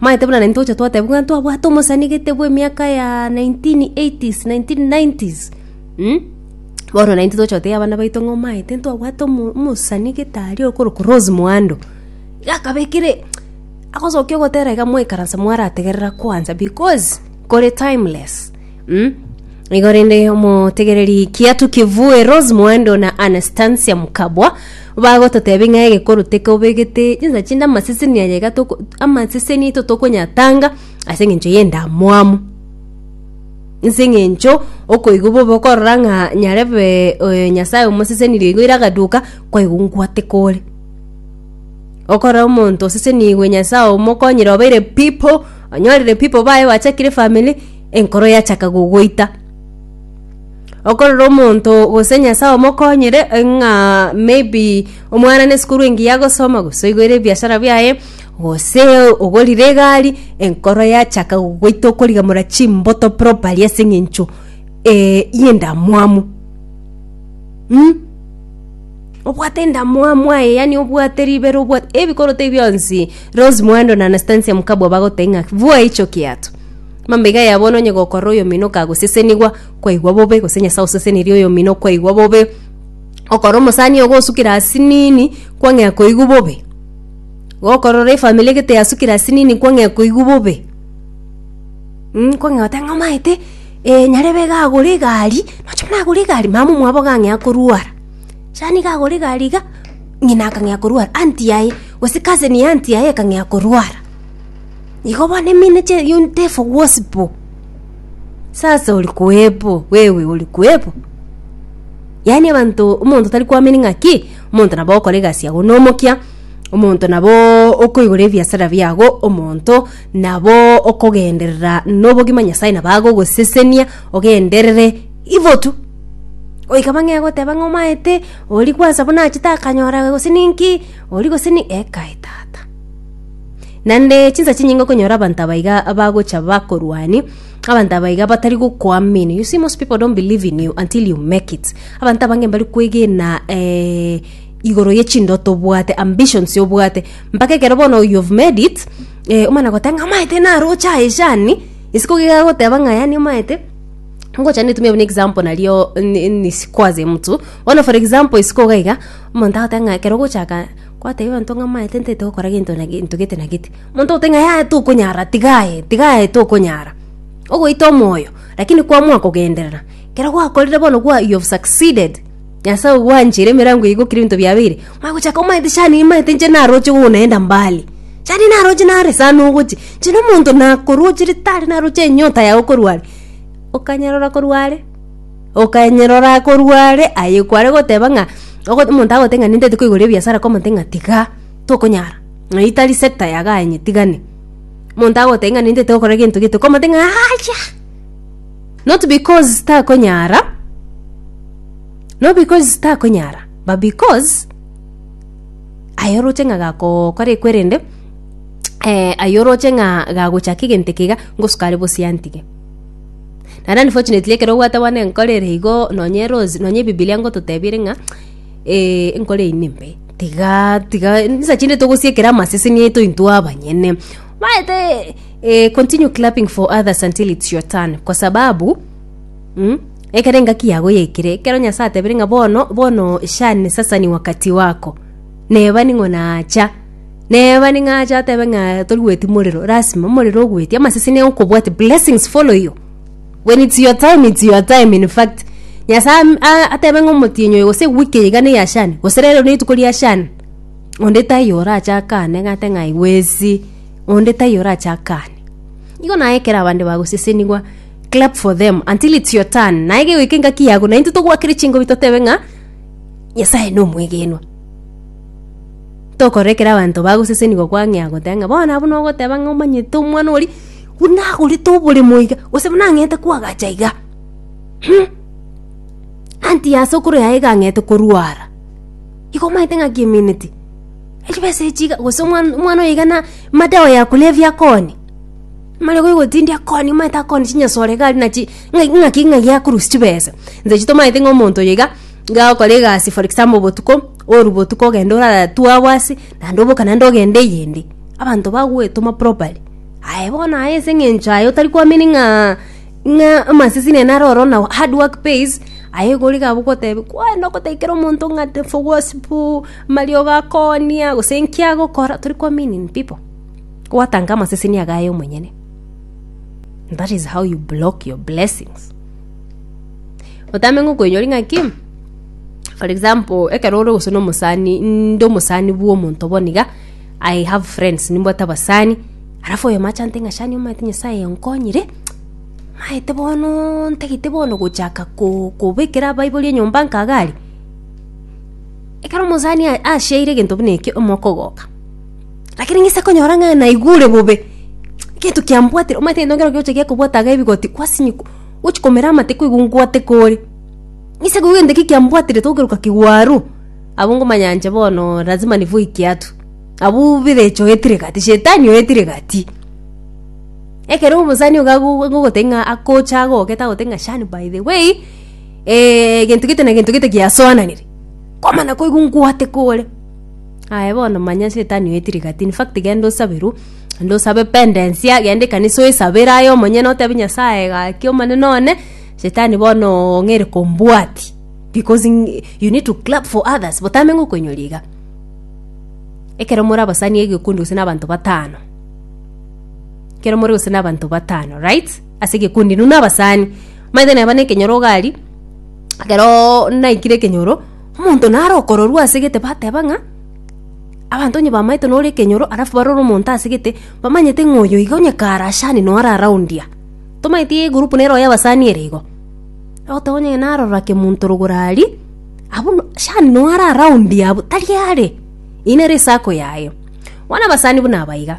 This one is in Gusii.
Maete buna naintwe gocha twateba buna twabwate omosani gete bw'emiaka ya 1980s, 1990s, mm? Bono naintwe tocha gotebia abana baito ng'a omaete ntwabwate omo- omosani gete aria okorokwa Rose Muhando. Iga akabekire, agosokia ogotera iga mwaikaransa mwarategerera kwansa because kore timeless. Mm. Igo rende omotegereri kiatu kivue Rose Mwando na Anastasia Mukabwa bagototebia ng'a egekoro tekobegete chinsa chinde amaseseni aya iga toko- amaseseni aito tokonyatanga ase eng'encho y'endamwamu nse eng'encho okoigwa bobe okorora ng'a nyarebe oyo nyasaye omosesenirie igo ere agaduka kwaigwa ngwate kore okorora omonto osesenigwe nyasaye omokonyire obeire people onyorire people baye bachakire efamiri. enkoro yachaka gogoita. Okorora omonto gose Nyasae omokonyire eh, ng'a maybe omwana na esukuru engiya agosoma gose oigoire ebiashara biaye gose ogorire egari enkoro yachaka gogoita okorigamora chimboto properly ase eng'encho eh, y'endamwamu mm. Obwate endamwamu aye yaani obwate ribero obwate ebikoroto ebi bionsi Rose Muhando na Anastansia Mkabwa bagoteba ng'a vua hicho kiatu. Mambaiga yabo nonye gokorera oyomino kagosesenigwa, kwaigwa bobe, gose Nyasae oseseneria oyomino, kwaigwa bobe. Okorora omosani ogo osukire ase nini, kwang'ea koigwa bobe. Gokorora efamiri egete yasukire ase nini, kwang'ea koigwa bobe. Mh, kwang'ea goteba ng'a omanyete, eh nyarebe iga agore egari, nocha buna agore egari, mama omwabo iga ang'ea korwara. Sani iga agore egari iga, ng'ina akang'ea korwara, anti yaye, gose cousin ya anti yaye ekang'ea korwara. Igo bono emino chia unit efo gwosi bo sasa ori koebo wewe ori koebo yaani abanto omonto tari kwamini ng'aki omonto nabo okore egasi yago na omokia omonto nabo okoigora ebiasara biago omonto nabo okogenderera na obogima nyasaye nabo agogosesenia ogenderere ibo tu goika bang'e egoteba ng'a omanyete ori kwansa buna achete akanyora gose ninki ori gose ni ekai tata. Naende chinsa chinyinge okonyora abanto abaiga bagocha bakorwani, abanto abaiga batari gokoamini. You see, most people don't believe in you until you make it. Abanto abange mbari kwegena eh, igoro ye chindoto obwate, ambitions obwate, mpaka ekero bono you have made it, eh, omana goteba ng'a amaete naroche aye shani, isiko giga goteba ng'a yani omaete ngocha netumie buna example nario ni- ni sikuaze mtu bono for example isiko iga iga omonto agoteba ng'a ekero ogochaka Gwatebia abanto ng'a maete ntaete gokora gento na gento gete na gete. Omonto ogotebi ng'a yaya tokonyara tiga aye, tiga aye tokonyara. Ogoita omoyo, lakini kwamua kogenderera, ekero gwakorire bono gwa you have succeeded, Nyasae ogwancheire emerango eyio gokira ebinto biabeire, omanye gochaka omaete shani eye maete inche naroche oo naenda mbali. Shani naroche nare sana ogochi, inche nomonto nakorwochere tari naroche enyota yago korwa are. Okanyarora korwa are. Okanyerora korwa are aye kware goteba ng'a ogo omonto agote ng'a nintete koigoria ebiasara kwa omonto ng'a tiga tokonyara ng'a eyi tari sector yago aye nyetigane. Omonto agote ng'a nintete gokora gento gete kwa omonto ng'a acha not because takonyara not because takonyara but because aye oroche ng'a gakokora ekwerende aye oroche ng'a gagochaka egento eke iga ngosukare bosie antige. Naende unfortunately ekero obwate bono enkoro ere igo nonya erosi, nonya ebibilia ngototebirie ng'a enkoro eywo nembe, tigaa tiga nsa chinde togosiekera amaseseni aito intwe abanyene. Omanyete continue clapping for others until it's your turn kwa sababu ekero engaki yago yaikire, ekero Nyasaye atebire ng'a bono bono shani sasa ni wakati wako, neba ning'o nacha. Neba ning'a ache atebe ng'a tori goeti morero. Lasima omorero ogoeti. Amasese nigo okobwate. Blessings follow you. When it's your time, it's your time in fact. Nyasaye am- a- atebe ng'a omotienyi oyo gose ewiki eye iga neya shani. Gose rero rituko ria shani. Onde taiyo orache akane ng'ate ng'a aiwezi. Onde taiyo orache akane. Igo naye ekero abande bagosesenigwa, clap for them until it's your turn. Naye kegoika engaki yago, naintwe togwakere chingobi totebe ng'a Nyasaye nomwegenwa. Tokorora ekero abanto bagosesenigwa kwang'ea agotea ng'a bono abwo nogoteba ng'a omanyete omwana oria, buna agorete oboremo iga, gose buna ang'ete kwagacha iga. Humm, anti ase okoroia aye iga ang'ete korwara, igo omanyete ng'aki emineti? Echibesa echi iga gose omwan- omwana oyo iga na madawa ya kulevya akoonia, amarego agotindia akoonia omanyete akoonia chinyasore iga aria nachi ng'a- ng'aki ng'a giakorusia chibesa. Ntoche tomanyete ng'a omonto oyo iga, iga agokora egasi for example botuko. Oru botuko ogende oratue abwo ase, naende oboke naende ogende eyende. Abanto bagoetoma properly. Aye bono aye ase eng'encho aye otari kwamini ng'a ng'a amasese nere naro oro nao hard work pays, aye igo origa abwo goteba kwani ogoteikera omonto ng'a tefo gosipu, amariogo akoonia, gose enki agokora, tori kwaminin pipo. Gwatanka amaseseni ago aye omonyene. That is how you block your blessings. otame ng'a okoinyori ng'aki for example ekero ore gose na omosani inde omosani bwa omonto bono iga, i have friends nimbwate abasani, alafu oyomo achante ng'a shani omanyete nyasaye onkonyire, maete bono ntagete bono gochaka ko- kobekera abaibori enyomba nka iga aria, ekero omosani a- ashaire egento buna ekio omwaka ogoka. Lakini ng'ise konyora ng'a naigure bobe egento kiambwatire omanyete egento nkero kegocha gekobwata iga ebigoti kwasinyi gochi komera amate ko igo ngwate kore ng'ise koigwa egento ki kiambwatire tokeruka kigwaru abwo ngomanya inche bono lazima nivo ekiatu abwo birecha oetire egati shetani oetire egati ekero omosani iga ago agogotebi ng'a akocha agogoketa agote ng'a shani by the way egento gete na gento gete giasoananire kwamana koigwa ngwate kore. Aye bono manya Shetani oete rigati. In fact genda osabe rwo, genda osabe pendensia, genda ekanisa oyesabere aye omonyene otebe Nyasaye gaki omonene one, Shetani bono oo ng'ere kombwati. Because ng- you need to clap for others, botame ng'okoinyora iga. Ekero more abasani egekundi gose na abanto batano, ekero more gose na abanto batano, right? Ase egekundi nuna abasani, omanyete neba na ekenyoro iga aria, ekeroooo naikire ekenyoro. Omonto nare okororwa ase gete bateba ng'a abanto onye bamaete nore ekenyoro alafu barore omonto ase gete bamanyete ng'a oyo iga onye kare ashani nore around ya tomanyeti egroup nero y'abasani ere igo ogoteba onye narora kemonto rogoro aria abwo no shani nore around ya abwo tari are eye nere esako yaye bono abasani buna aba iga.